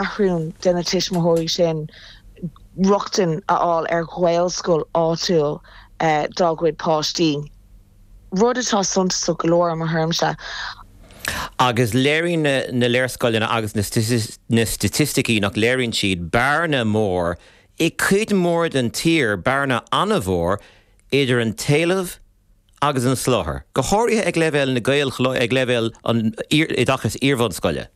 ceathrún de na tuismitheoirí sin rochtain a fháil ar ghaelscoil áitiúil dá gcuid páistí, rud atá suntasach go leor i mo thuairimse. Agus léiríonn na léarscáileanna agus na staitisticí, nach léiríonn siad bearna mór i gcuid mhór den tír, bearna an-mhór idir an t-éileamh, agus an soláthar, go háirithe ag leibhéal na nGaelcholáistí, ag leibhéal an oideachais iarbhunscoile.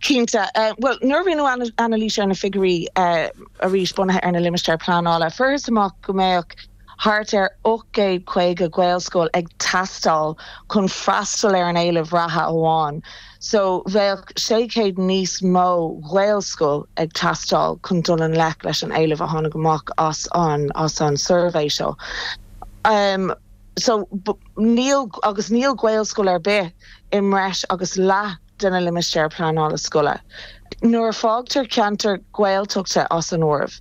Cinnte. Bhuel, nuair a rinneadh anailís ar na figiúirí, arís bunaithe ar na limistéir pleanála, fuarthas amach go mbeadh thart ar 850 gaelscoil ag teastáil chun freastal ar an éileamh reatha amháin. So, bheadh 600 níos mó Gaelscoil ag teastáil chun dul i ngleic leis an éileamh a tháinig amach as an as an suirbhé seo. So, ní, agus níl Gaelscoil ar bith i mbreis agus leath de na limistéir pleanála scoile. Nuair a fágtar ceantair Gaeltachta as an áireamh.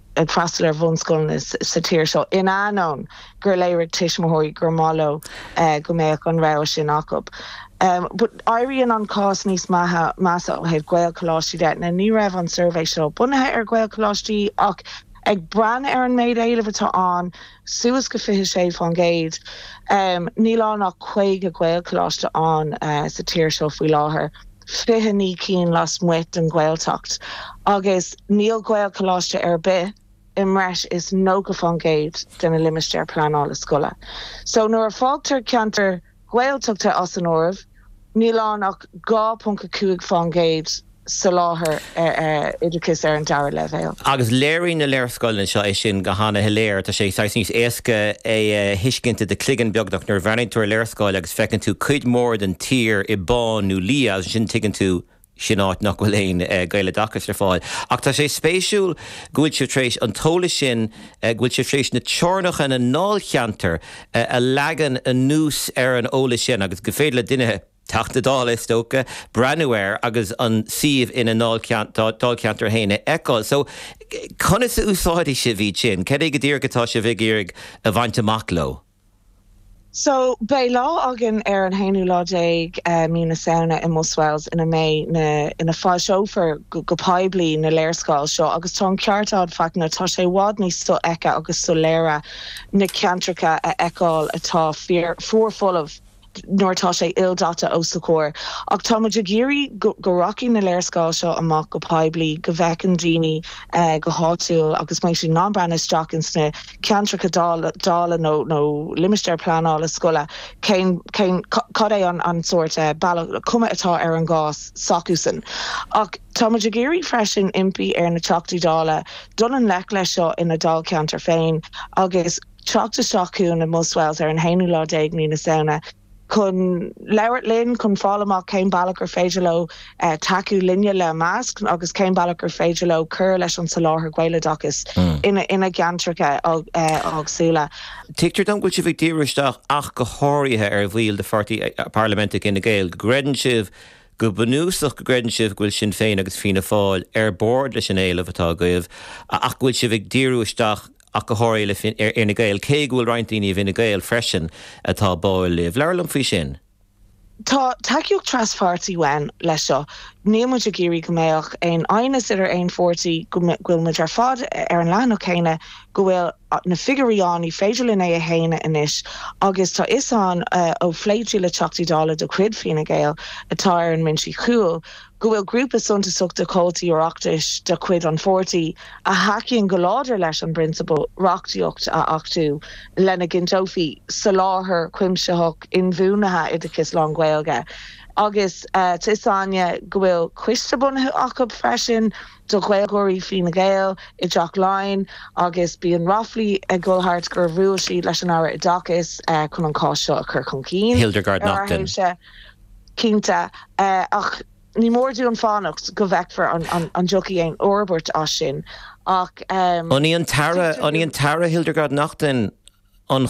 ag freastal ar bhunscoileanna sa tír seo in ainneoin gur léirigh tuismitheoirí gur mhaith leo go mbeadh an rogha sin acu. But éiríonn an cás níos measa ó thaobh Gaelcholáistí de. Ní raibh an suirbhé seo bunaithe ar Ghaelcholáistí ach ag breathnú ar an méid éilimh atá ann, suas go 26%, níl ann ach 50 Gaelcholáiste ann sa tír seo faoi láthair. 29 cinn lasmuigh den Ghaeltacht agus níl Gaelcholáiste ar bith i mbreis is 90% de na limistéir pleanála scoile. So nuair a fágtar ceantair Gaeltachta as an áireamh, níl ann ach 2.5% soláthair. oideachais ar an dara leibhéal. Agus léiríonn na léarscáileanna seo é sin go han-shoiléir. Tá sé saghas níos éasca é a thuiscint i do chloigeann, beagnach, nuair a bhreathnaíonn tú ar léarscáil agus feiceann tú cuid mhór den tír i bán nó liath, agus ansin tuigeann tú, sin áit nach bhfuil aon Ghaeloideachas ar fáil. Ach tá sé spéisiúil go bhfuil sibh tar éis an t-eolas sin, go bhfuil sibh tar éis teorainneacha na ndáilcheantar a leagan anuas ar an eolas sin agus gur féidir le duine, Teachta Dála, is dócha, breathnú air agus an suíomh ina ndáilcheantar féin a fheiceáil. So, conas a úsáidfidh sibh iad sin? Cad é go díreach atá sibh ag iarraidh a bhaint amach leo? So, beidh lá againn ar an haonú lá déag Mí na Samhna i mBuswells ina mbeidh na, ina foilseofar go poiblí na léarscáil seo agus tá an ceart agat, Fachtna, tá sé i bhfad níos sofheicthe agus soiléire na ceantracha a fheiceáil atá fuar folamh. nuair atá sé ildaite os do chomhair. Ach tá muid ag iarraidh go rachaidh na léarscáil seo amach go poiblí, go bhfeiceann daoine go háitiúil agus beidh siad in ann breathnú isteach insna ceantracha dála nó limistéir pleanála scoile cén, cad é an sórt bealach, cuma atá ar an gcás s'acusan. Ach tá muid ag iarraidh freisin impí ar na Teachtaí Dála dul i ngleic leis seo ina ndáilcheantar féin agus. teacht isteach chugainn i mBuswells ar an haonú lá déag mí na Samhna chun labhairt linn, chun fáil amach cén bealach gur féidir leo tacú linne, le meas, agus cén bealach gur féidir leo cur leis an tsoláthar Gaeloideachais ina gceantracha éagsúla. Tuigtear dom go bhfuil sibh ag díriú isteach ach go háirithe ar bhaill de Pháirtí Parlaiminte Fhine Gael, go gcreideann sibh, go bunúsach go gcreideann sibh go bhfuil Sinn Féin agus Fianna Fáil ar bord leis an éileamh atá agaibh ach go bhfuil sibh ag díriú isteach ach go háirithe ar Fhine Gael, cé go bhfuil roinnt daoine i bhFine Gael freisin atá báuil libh. Labhair liom faoi sin. Tá tacaíocht traspháirtí ann leis seo. Níl muid ag iarraidh go mbeadh aon aighneas idir aon pháirtí, go bhfuil muid ar fad ar an leathanach céanna, go bhfuil na figiúirí ann, ní féidir linn é a shéanadh anois agus tá 'fhios againn ó phléití le Teachtaí Dála de chuid Fine Gael atá ar an mbinse cúil, go bhfuil grúpa suntasach de chomhaltaí Oireachtais de chuid an pháirtí a thacaíonn go láidir leis an bprionsabal reachtaíocht a achtú lena gcinnteofaí soláthar cuimsitheach inbhuanaithe oideachais lán-Ghaeilge agus tá fhios againne go bhfuil coiste bunaithe acu freisin do Ghaeilgeoirí Fine Gael i dTeach Laighean agus bíonn ráflaí ag dul thart gur bhuail siad leis an Aire Oideachais chun an cás seo a chur chun cinn. Hildegarde Naughton. Cinnte, ach ní mór dúinn fanacht go bhfeicfear an dtiocfaidh aon fhorbairt as sin. Ach an í an tAire, an í an tAire Hildegarde Naughton an.